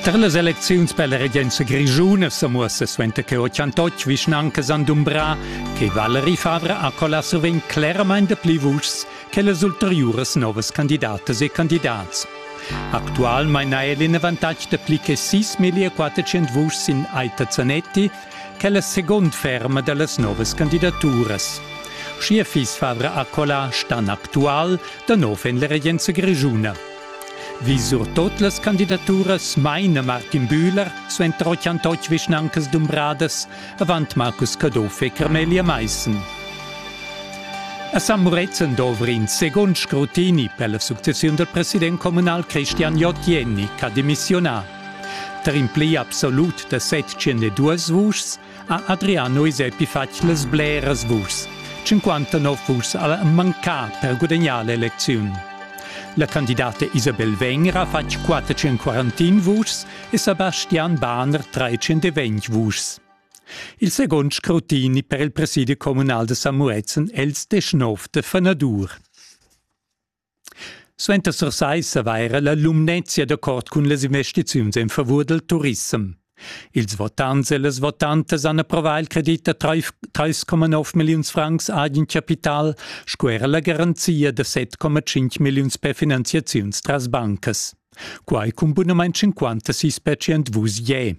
Tar las elecziuns per la regenza grischuna sa muossa suenter che ho chantotg vischnanca Sandumbra che Valerie Favre ha collà sovent cleramain dapli vuschs che las ulteriuras novas candidatas e candidats. Actualmain ha el in avantatg da pli che 6.400 vuschs in Aita Zanetti, che è la seconda ferma da las novas candidaturas. Schier fiss Favre Accola stan actual da nov en la regenza grischuna. Vi surtot las candidaturas maina Martin Bühler suenter 88 vischnancas dumbradas avant Marcus Caduff e Carmelia Maissen. A San Murezzan dovri in segund scrutini per la successiun del president comunal Christian Jotjenny ch'ha demissiunà. Tar in pli absolut da 702 vuschs ha Adriano Isepi fatg las bleras vuschs. 59 vuschs al manca per gudagnar l'elecziun. La candidata Isabel Wenger ha fatg 441 vuschs e Sebastian Bahner 320 vuschs. Il second scrutini per il presidi communal de Samuezen els 19 de Fenadur. Suenter Sursaissa va era la Lumnezia d'accord cun las investiziuns en favur del turissem. Ils votants e las votantas han approvà il credit da 3,9 milliuns francs agen capital sco era la garanzia da 7,5 milliuns per finanziaziuns tras bancas. Quai cun bunament 56% vus je.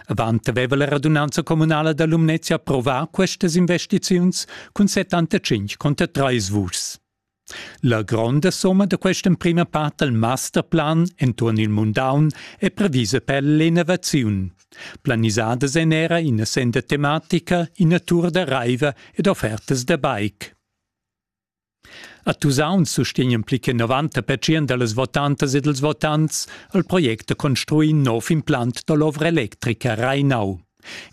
Avant aveva la radunanza communala da Lumnezia approvà questas investiziuns cun 75 conter trais vuschs. La gronda somma da quest'emprima part dal masterplan enturn il mundaun è previsa per l'innovaziun. Planisadas èn era ina senda tematica, ina tur da raiva ed offertas da bike. A Tusaun sustegnan pli che 90 pertschient da las votantas e dals votants il project da construir in nov implant da l'ovra electrica Reinau.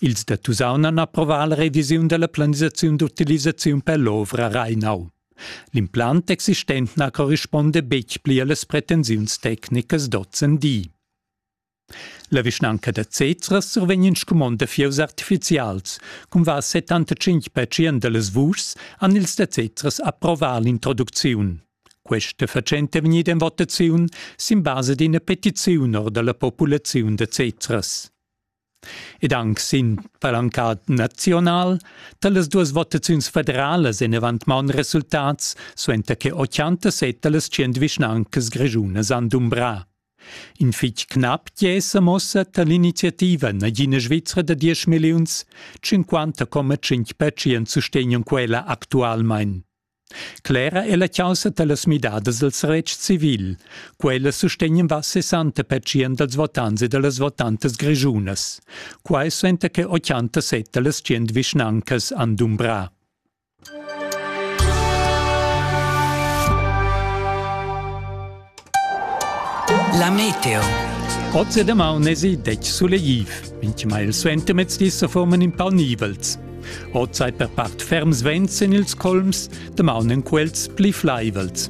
Ils da Tusaun han approvà la revisiun da la planisaziun d'utilisaziun per l'ovra Reinau. L'implant existent na corrispunda betg pli a las pretensiuns tecnicas d'ozendi. La vischnanca da Zezras survegn in scumond da fieus artifizials. Cun va 75 percent da las vuschs han ils da Zezras approvà l'introducziun. Questa fatschenta è vegnida en votaziun sin basa d'ina petiziun or da la populaziun da Zezras. Ed anche sin palancat nazional da las duas votaziuns federalas en avant maun resultats suenter che 87 da las 100 vischnancas grischunas han dumbrà. In fich cnap gliesa mossa tar l'iniziativa nagina Svizra da diesch milliuns, cinquanta coma tschinch pertschient sustegnan quella actualmain. Clera è la chaussa da las midadas dals retgs civil. Quellas sustegnan va 60 pertschient dals votants e da las votantas grischunas. Quai suenter che 87 da las 100 vischnancas han dumbrà. La meteo. Oz e damaun esi detg sulegliv. Mintgima il suentermezdi se forman in pau nivels. Oz ei per part ferms vents en ils colms, damaun en quels pli flaivels.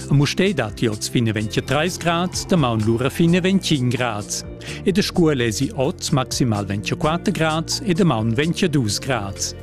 A Mustei dat oz fine 23 grads, damaun lura fine 25 grads. E de Scuol esi oz maximal 24 grads e damaun 22 grads.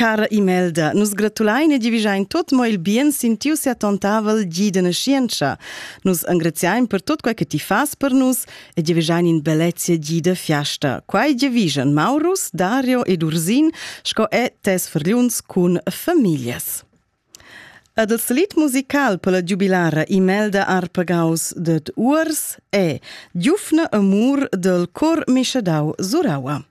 Cara Imelda, nus gratulain e divigiain tot mo il bien sin tiu seattontavel gi de nascientscha. Nus engraziain per tot quei che ti fas per nus e divigiain in bellezia gi de fiasta. Quai divigian Maurus, Dario ed Ursin sco e tes fergliuns cun familias. Ed il slit musical per la giubilara Imelda Arpagaus ded Urs è Giufne amur del cor mischadau Suraua.